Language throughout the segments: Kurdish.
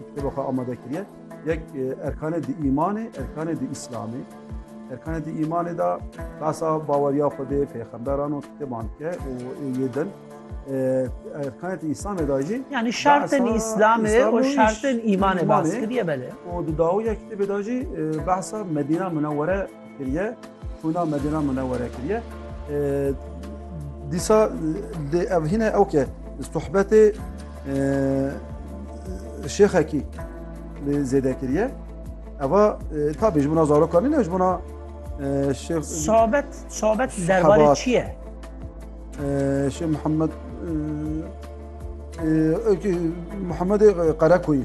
Kitêba xwe amade kiriye. Yek erkanê di îmanê, erkanê di îslamê. Erkanê di îmanê da basa baweriya Xwedê, pêxemberan û kitêban ke û yê din. Erkanê di îslamê da jî Yani şertên îslamê û şertên îmanê bas kiriye belê. û di dawiya kitêbê da jî behsa Medîna Minewwere kiriye hûna Medîna Munewwere kiriye. Dîsa lê ev hîne ew ke sohbetê şêxekî lê zêde kiriye. Eva tabî ji bûna zarokan nîne ji bûna şêx Sohbet sohbet derbarê çi ye? Şêx Mihemed Muhamedê Qerekoyî.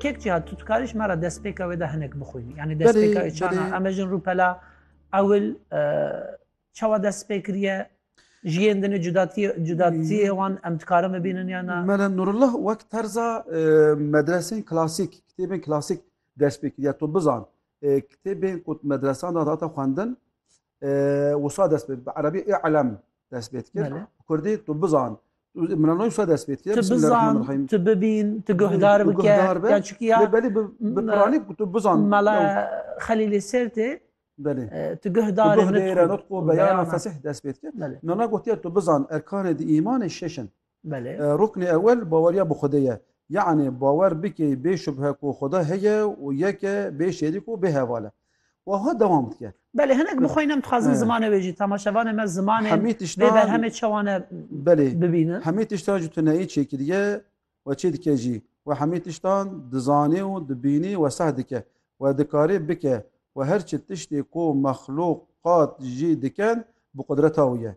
Kek cihat tu dikarî me re destpêka wê de hinek bixwînî yanî destpêka wê çana em e jin rûpela ewil çawa dest pê kiriye ji yên dinê cudatiyê wan em dikarin bibînin ya na Mele Nurullah wek terza medresên klasîk kitêbên klasîk dest pê kiriye tu bizan kitêbên ku medresan da data xwendin Wisa dest bi Erebî ê elem dest pê dikir. Bi Kurdî tu bizan. Mira nayê wisa dest pê dikir. Tu bizan, tu bibîn, tu guhdar bike. Ya çikî ya. Belê bi Piranî tu bizan. Mala Xelîlê Sêrtê Belê. Tu guhdar bike. Tu guhdar bike. Nutqu beyana fesih dest pê dikir. Nana gotiye tu bizan erkanê di îmanê şeş in. Belê. Ruknê ewel baweriya bi Xwedê ye. Yanî bawer bikê bê şubhe ku Xweda heye û yek e, bê şerîk û bê heval e. Wiha dewam dike. Belê hinek bi xwe yî ne em dixwazin zimanê wê jî temaşevanê me zimanê Hemî vê tiştan berhemê çewane belê bibînin. hemî tiştan ji tuneyî çêkiriye we çê dike jî. We hemî tiştan dizanê û dibînî we seh dike. We dikarê bike. We her çi tiştê ku mexluqat jî dikin bi qudreta wî ye.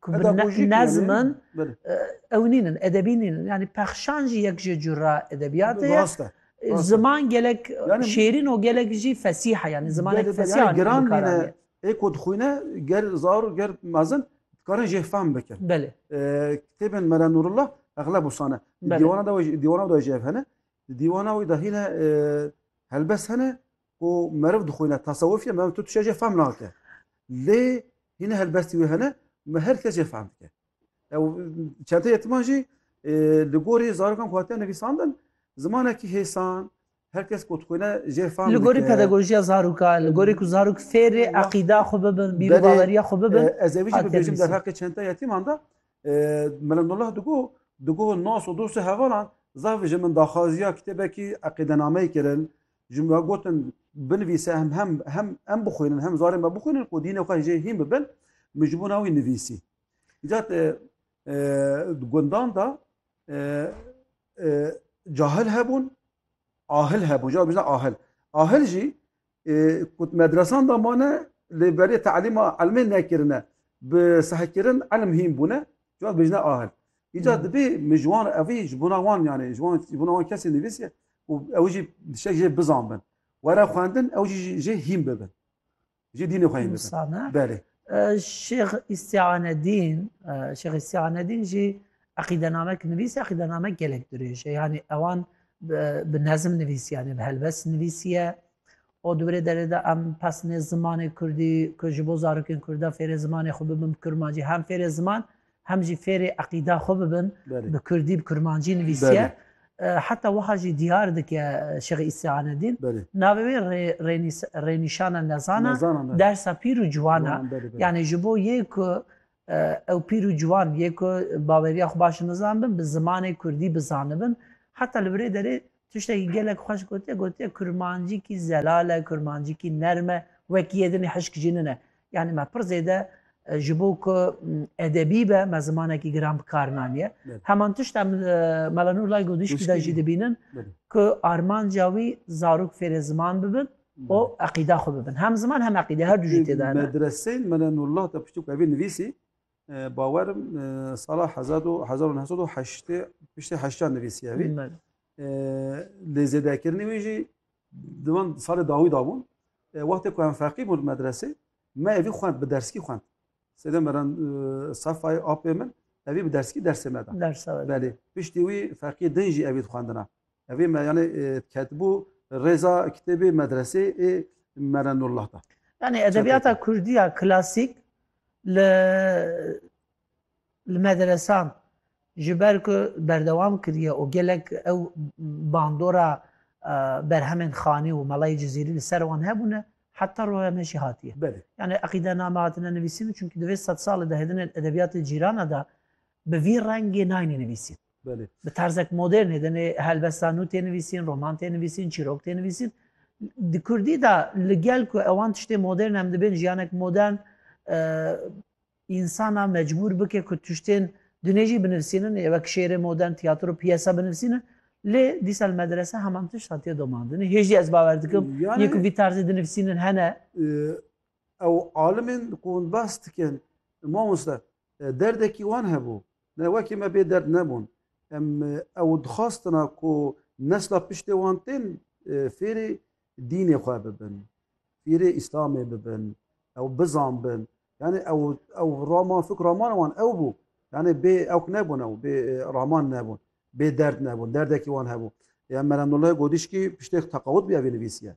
Ku bi nezm in, ew nîn in, edebî nîn in. Yanî pexşan jî yek ji cura edebiyatê ye. Rast e. Ziman gelek şêrîn û gelek jî fesîh e. Yanî zimanek fesîh anî bi kar anî. Ê ku dixwîne ger zar û ger mezin dikarin jê fehm bikin. Belê. Kitêbên Mela Nûrullah exleb wisa ne. Dîwana dîwana da jê ev hene. Dîwana wî da hîne helbest hene Ku meriv dixwîne tasewufî me tu tişê jê fehm nake. Lê hîne helbestî wê hene me her kes jê fehm dike. Ew çente yetiman jî li gorî zarokan ku hatiye nivîsandin zimanekî hêsan her kes ku dixwîne jê fehm dike. Li gorî pedagojiya zarokan, li gorî ku zarok fêrê eqîda xwe bibin, bîrbaweriya xwe bibin. Ez ê vî jî bibêjim derheqê çente yetiman de Mela Nurullah digot digot nas û dostê hevalan zaf ji min daxwaziya kitêbekî eqîdenameyê kirin. Ji me gotin binivîse hem hem hem em bixwînin hem zarê me bixwînin ku dînê xwe jê hîn bibin min ji bo na wî nivîsî. Îcat di gundan da cahil hebûn ahil hebûn ja bijna ahil. Ahil jî ku medresan da mane lê berê telîma elmê nekirine bi sehkirin elm hîn bûne ja bijna ahil. Îcar dibê min ji wan evî ji bona wan yanê ji wan ji bona wan kesê nivîsê û ew jî dişek jê bizan bin. Were xwendin ew jî jê hîn bibin. Jê dînê xwe hîn bibin. Sane. Belê. Şêx Îstianedîn, Şêx Îstianedîn jî eqîdenamek nivîs, eqîdenamek gelek dirêj e. Yanî ewan bi nezim nivîs yanî bi helbes nivîsiye. O di birê derê de em pesnê zimanê Kurdî ku ji bo zarokên Kurda fêrê zimanê xwe bibin bi kurmancî hem fêrê ziman hem jî fêrê eqîda xwe bibin, bi kurdî, bi kurmancî nivîsiye. Heta wiha jî diyar dike Şêx Îsa Anedîn, navê wê rênîşana nezan e, dersa pîr û ciwan e. Yanî ji bo yê ku ew pîr û ciwan yê ku baweriya xwe baş nizanibin, bi zimanê kurdî bizanibin, heta li birê derê Tiştekî gelek xweş gotiye, gotiye kurmancîkî zelal e, kurmancîkî nerm e, wekî yê din hişk jî nine. Yanî me pir zêde ji bo ku edebî be me zimanekî giran bi kar naniye. Heman tişt em li Mela Nur Lay Godîşkî de jî dibînin ku armanca wî zarok fêrê ziman bibin û eqîda xwe bibin. Hem ziman hem eqîde her du jî tê de hene. Medreseyên Mela Nurlah de piştî ku ev ê nivîsî Bawerim sala hezar û hezar û neh sed û heştê piştê heştiyan nivîsiye vî. Lê zêdekirinê wî jî di van salê dawî da bûn. Wextê ku em feqî bûn medresê me evî xwend bi derskî xwend. Sêdem meran sefayê apê min evî bi derskî dersê me da. Belê piştî wî feqî din jî evî dixwendina. Evê me yani ketibû rêza kitêbê medresê ê Merenullah da. Yani edebiyata Kurdiya klasîk li li medresan ji ber ku berdewam kiriye û gelek ew bandora berhemên xanî û melayê cizîrî li ser wan hebûne heta roya me jî hatiye. Yani eqîdename hatine nivîsîn û çunkî di vê sed salê de hêdinên edebiyatê cîrana de Bi vî rengê nayînî nivîsîn. Belê. Bi terzek modern hêdenê helbesta nû tê nivîsîn, roman tê nivîsîn, çîrok tê nivîsîn. Di Kurdî de li gel ku ewan tiştê modern em dibên jiyanek modern insana mecbûr bike ku tiştên dunê jî binivîsînin ê wek şêrê modern, tiyatro, piyesa binivîsînin. Lê dîsa li medrese heman tiştan tê domandin. Hêjî ez bawer dikim yê ku vî terzê dinivîsînin hene. Ew alimên ku hûn behs dikin, mamoste, Derdekî wan hebû. Ne wekî me bê derd nebûn. Em ew dixwastina ku nesla piştê wan tên fêrê dînê xwe bibin, fêrê îslamê bibin, ew bizanbin. Yanî ew ew raman fik ramana wan ew bû. Yanî bê ewk nebûn ew, bê raman nebûn, bê derd nebûn. Derdekî wan hebû. Ya Meremnullah Godîşkî piştêk teqawut bûye vê nivîsiye.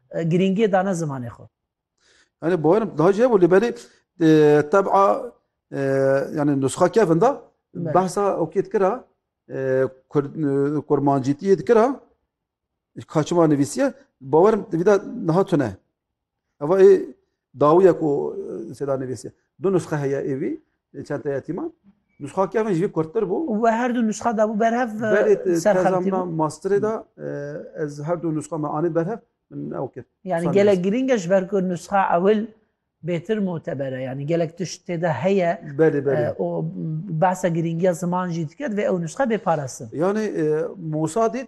Girîngiyê dane zimanê xwe. Yani boyerm daha jê bû lê berê teb'a yani nusxa kevin da behsa okê dikira kurmancîtiyê dikira kaçima nivîsiye bawerim vîda niha tune. Eva ê Dawiya ku seda nivîsiye. Du nusxe heye ê vî çenteyê yetîman. Nusxa kevin ji vî kurttir bû. Û we her du nusxa dabû berhev ser xeltî. Belê tezamina masterê de ez her du nusxa me anîn berhev min ew kir. Yanî gelek girîng e ji ber ku nusxa ewil bêtir mûteber e. Yanî gelek tişt tê de heye. Belê belê. Û behsa girîngiya ziman jî dike divê ew nusxe bê parastin. Yanî Mûsa dît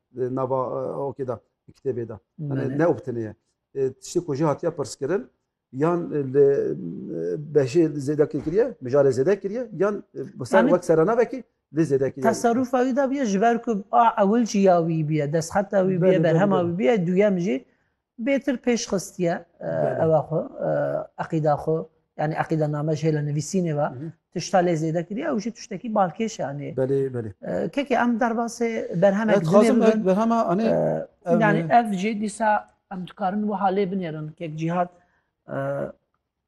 di nava okê de kitêbê de ne û bitinê ye tiştê ku jî hatiye pirskirin yan li beşê zêde kiriye mijarê zêde kiriye yan ser wek serenavekî lê zêde kiriye teserûfa wî de biye ji ber ku a ewil jî ya wî biye destxeta wî biye berhema wî biye duyem jî Bêtir pêş xistiye ewa xwe eqîda xwe yani eqîda name ji hêla nivîsînê ve tişta lê zêde kiriye ew jî tiştekî balkêş e anê belê belê kekê em derbasê berhemek dixwazim berhema anê yani ev jê dîsa em dikarin wiha lê binêrin kek cîhat